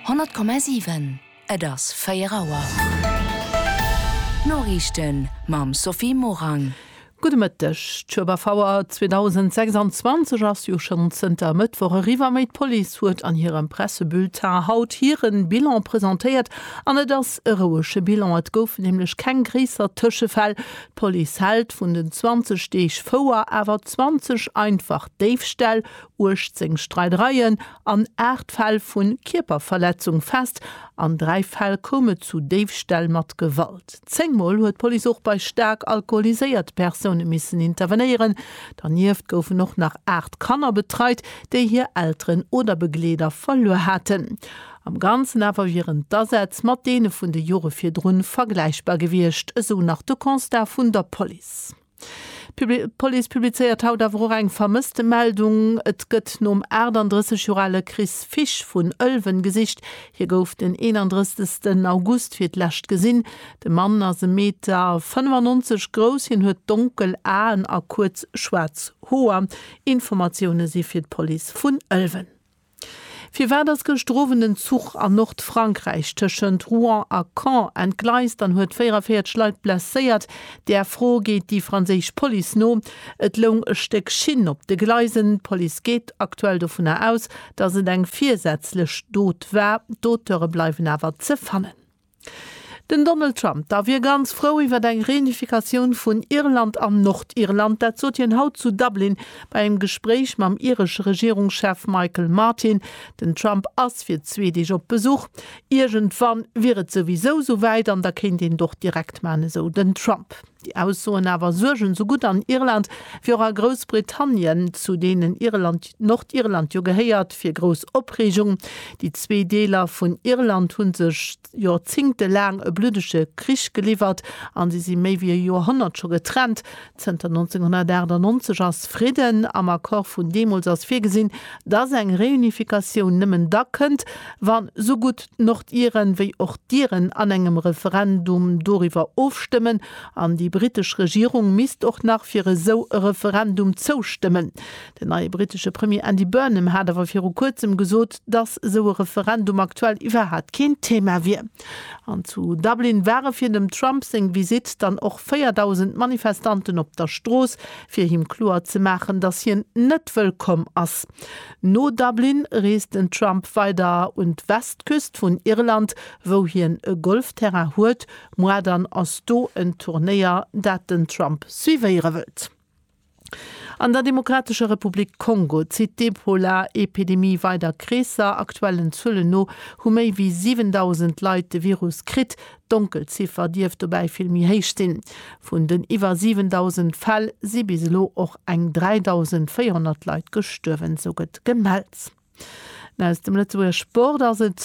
100,7 Et ass 4 Auer. D'Noriichten mam Sophie Morang. Gudde Mëtteg. D'Schueberfouer 2026 ass jo schonn zënter e Mëttwoch eriwwer, mee d'Police huet an hirem Pressebulletin haut hire Bilan presentéiert. An et ass e rouege Bilan, et goufen nämlech keng gréisser Tëschefäll. D'Police hält vun den 20 Deeg Fouer awer 20 einfach Déifställ, 18 Streidereien an 8 Fäll vu Kierperverletzung fest. An 3 Fäll koum et zu Déifställ mat Gewalt. Zéngmol huet d'Police och bei staark alkoholiséiert Persoune missen intervenéieren. Dernieft goufen och nach 8 Kanner betreit, déi hir Elteren oder Begleeder verluer haten. Am Ganzen awer wieren d'Asätz mat deene vun de Jore virdrun vergläichbar gewiescht, esou nach de Constat vun der Police. D'Police publizéiert haut awer och eng Vermësstemeldung. Et gëtt nom 38 Joer ale Chris Fisch vun Ëlwen gesicht. Hie gouf den 31 August fir d'lescht gesinn. De Mann ass e Meter 95 grouss. Hien huet donkel Aen a kuerz schwaarz Hoer. Informatioune si fir d'Police vun Ëlwen. Firwat ass gëschter Owend en Zuch an Nordfrankräich tëschent Rouen a Caen entgleist an huet 44 Leit blesséiert? Där Fro geet déi franséisch Police no. Et loung e Stéck Schinn op de Gleisen. D'Police geet aktuell dovunner aus, datt et eng virsätzlech Dot war. D'Auteure bleiwen awer ze fannen. Den Donald Trump da wier ganz frou iwwer eng Reunifikatioun vun Irland an Nordirland. Dat sot hien haut zu Dublin bei engem Gespréich mam iresche Regierungschef Michael Martin. Den Trump ass fir zwee Deeg op Besuch. Iergendwann wier et souwisou souwäit an da kéint een et och direkt maachen, esou den Trump. Déi Aussoen awer suergen esou gutt an Irland wéi och a Groussbritannien, zu deenen Irland, Nordirland jo gehéiert, fir grouss Opreegung. Déi zwee Deeler vun Irland hu sech Jorzingte laang e bluddege Krich geliwwert an si si méi wéi e Joerhonnert scho getrennt. Zënter 1998 ass Fridden. Am Accord vun deemools ass virgesinn, dass eng Reunifikatioun nëmmen da kënnt, wann esou gutt. d'Nordiren wéi och d'Iren an engem Referendum doriwwer ofstëmmen, an déi britesch Regierung misst och nach fir esou e Referendum zoustëmmen. Den neie britesche Premier Andy Burnham hat awer viru kuerzem gesot, datt esou e Referendum aktuell iwwerhat keen Thema wier. An zu Dublin ware fir dem Trump seng Visitt dann och 4.000 Manifestanten op der Strooss, fir him kloer ze maachen, datt hien net wëllkomm ass. No Dublin reest den Trump weider un d'Westküst vun Irland, wou hien e Golfterrain huet. Muar dann ass do en Turnéier, dat den Trump suivéiere wëllt. An der Demokratescher Republik Kongo zitt d'Ebola-Epidemie weider Kreesser. Aktuellen Zuelen no hu méi wéi 7.000 Leit de Virus kritt, D'Donkelziffer dierft dobäi vill méi héich sinn. Vun den iwwer 7.000 Fäll si bis elo och eng 3.400 Leit gestuerwen, esou gëtt gemellt. An aus dem Lëtzebuerger Sport ass et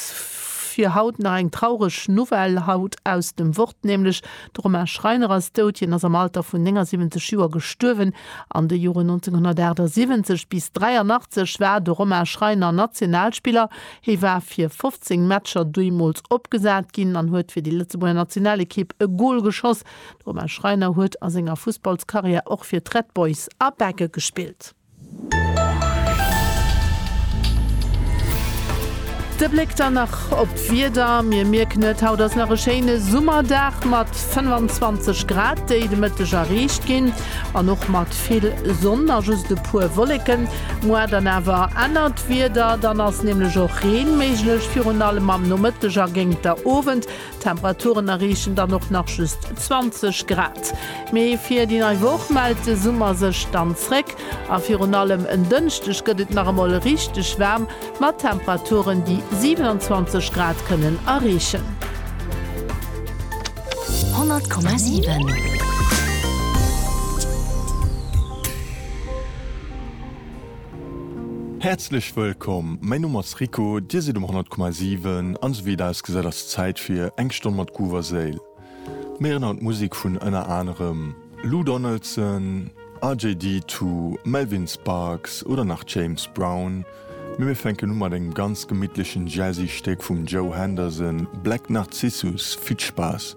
fir haut nach eng traureg Nouvelle, haut aus dem Wort nämlech. De Romain Schreiner ass dout. Hien ass am Alter vun 79 Joer gestuerwen. An de Joren 1978 bis 83 war de Romain Schreiner Nationalspiller Hie war fir 15 Matcher duerjemools opgesat ginn an huet fir déi Lëtzebuerger Nationalekipp e Gol geschoss. De Romain Schreiner huet a senger Fussballskarriär och fir d'Red Boys a Begge gespillt. De Bléck dann nach op d'Wieder. Mir mierken et, haut ass nach e schéine Summerdag mat 25 Grad, déi de Mëtteg erreecht ginn an och mat. Ooscht vill Sonn a just e puer Wolleken. Muar dann awer ännert Wieder, dann ass nämlech och Reen méiglech, virun allem am Nomëtteg a géint der Owend. D'Temperaturen erreechen dann och nach just 20 Grad. Mee fir déi nei Woch mellt de Summer sech dann zréck a virun allem en Dënschdeg gëtt et nach emol richteg waarm mat Temperaturen, déi 27 Grad kënnen erreechen. 100,7 Häerzlech wëllkomm, mäi Numm ass Rico, Dir sidd um 100,7 an esou wéi et ausgesäit ass et Zäit fir eng Stonn mat Groove a Séil. Mir héieren haut Musek vun ënner anerem Lou Donaldson, RJD Two, Melvin Sparks oder nach James Brown. Mee mir fänken u mat engem ganz gemittlechen jazzy Stéck vum Joe Henderson, Black Narcissus. Vill Spaass!